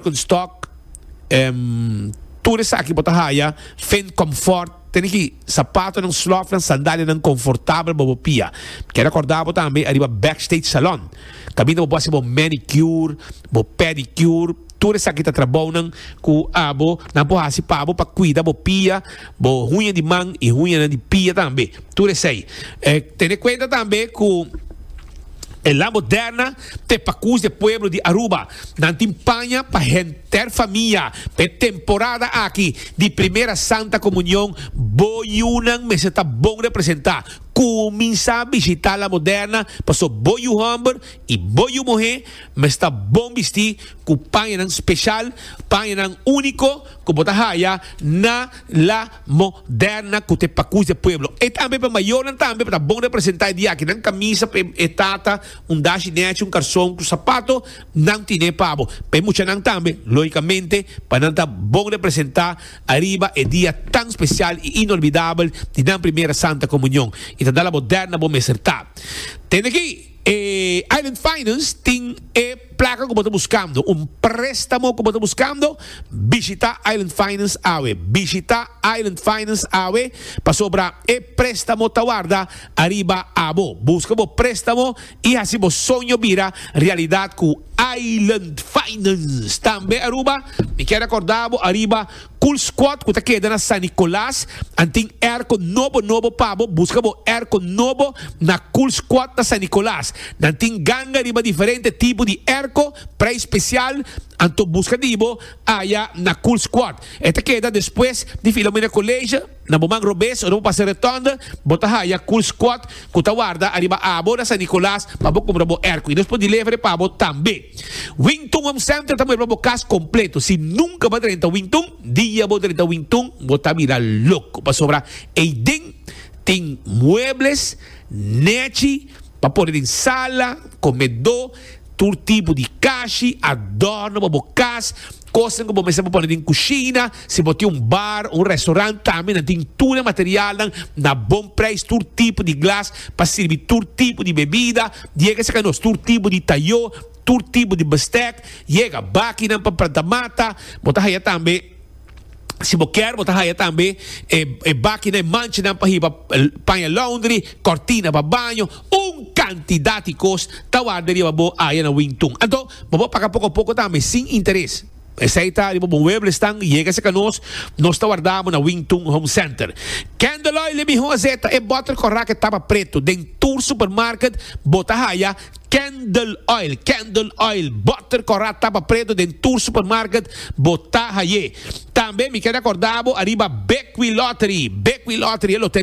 Kunstòk, em, tur esaki bo ta haya fin kòmfòrt. Tene ki sapatonan, slòfnan, sandalianan konfortabel pa bo pia. Mi keda kòrda bo tambe ariba Backstage Salon. Kaminda bo por hasi bo manicure, bo pedicure, tur esaki ta trabounan ku abo nan por hasi pa bo pa kuida bo pia, bo huña di man i huñanan di pia tambe. Tur esei. Tene kuenta tambe ku e La Moderna Te pacus de pueblo di Aruba, nan tin paña pa henter famia pa e temporada aki di Primera Santa Comunion. Bo yunan mester ta bon representa. Cuminsa bishita La Moderna paso bo yu homber y bo yu muhe mester ta bon bisti cu pañanan special, pañanan unico cu bo ta haya na La. Mo derna cu ta e pacuch di e pueblo. E tambe pa e mayornan tambe pa ta bon representa e diakinan camisa pa e tata un dashi nechi un carson cu sapato nan tine e pabo pa e muchanan tambe logicamente pa nan ta bon representa ariba e dia tan special y inolvidabel di nan primera santa comunion y ta dal abo derna bo mester ta tende ki E Island Finance tin e plaka ku bo ta buskando, un préstamo ku bo ta buskando? Bishitá Island Finance awe. Bishitá Island Finance awe pasobra e préstamo ta warda ariba abo. Buska bo préstamo i hasi bo soño bira realidat ku Island Finance. Tambe Aruba, mi kier rekordá bo ariba Cool Squad cu ta keda na San Nicolas a tin airco nobo nobo pa bo. Busca bo airco nobo na Cool Squad na San Nicolas. Nan tin ganga riba diferente tipo di airco, prijs special, anto busca di bo aya na Cool Squad. E ta keda despues di Filomena College. Na bo man robes ora bo pasa Retonda, bo ta haya Cool Squad cu ta warda ariba abo na San Nicolas pa bo cumbra bo ercu y nos por delevera e pa bo tambe. Wington Home Center ta muebla bo cas completo. Si nunca bo a drenta Wington, dia bo drenta Wington bo ta mira loco pasobra eyden tin muebles nechi pa pone den sala, comedo, tur tipo di cashi, adorno pa bo cas, Kosnan ku bo mester pa pone den kushina, Si bo tin un bar o un restaurant, tambe nan tin tur e materialnan na bon preis, tur tipo di glas pa sirbi tur tipo di bebida, yega saka nos, tur tipo di tayó, tur tipo di bestek, yega, bakinan pa planta mata, bo ta haya tambe, si bo kier, bo ta haya tambe e bakinan, e manchanan pa hiba paña laundry, kòrtina pa baño, un kantidat di kos ta warda riba bo aya na Wingtun. Anto, Bo por paga poko poko tambe, sin interes. Esei ta riba bo mueblesnan, yega serka nos, nos ta warda bo na Wing Tun Home Center. Kendeloy le miho a zeta e botter kòrá ke tapa pretu. Den tur supermarket bo ta haya Kendel Oil, Kendel Oil, botter kòrá tapa pretu den tur supermarket bo ta hay'é. Tambe mi keda kòrda bo ariba Bekwilottery, Bekwilottery e loteria.